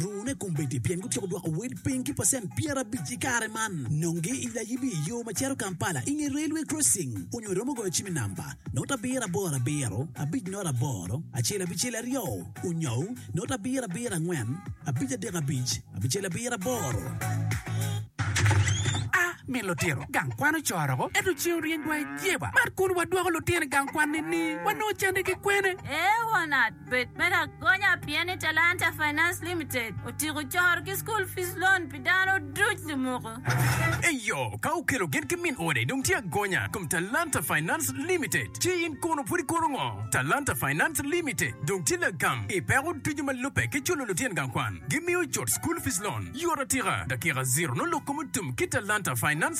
Rune kombeddi pien gutyeko dwoko wel piny ki pacent pyerabic i kare man. Nonge i layibi i yo ma cito Kampala i nge Railway Crossing onyo iromo goyo cim i namba, not abiro aboro abiro, abic not aboro, acel abicel aryo, onyou, not abiro abiro angwen, abic adek abic, abicel abiro aboro. A min lutino gang kwan ocoro-go, ento ceng oryeny dwai jeba. Mar kun wadwoko lutino i gang kwan-ni ni wanongo cande ki kwene? Ee, won At. Bed me lagonya pien ni Talanta Finance Limited otyeko coro ki School Fees Loan pi dano duc lumuko. Eyo, ka okelo gin ki min ode dong tye agonya i kom Talanta Finance Limited. Ci in kono pud ikoto ngo? Talanta Finance Limited dong tye lagam i peko ducu ma lubbe ki culo lutyen gang kwan. Gimiyo cut School Fees Loan yot atika, dakika ziro nongo lok kom otum ki Talanta Finance.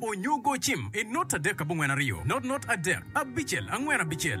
Onyo go cim i not adek abongwen aryo, not not adek, abicel angwen abicel.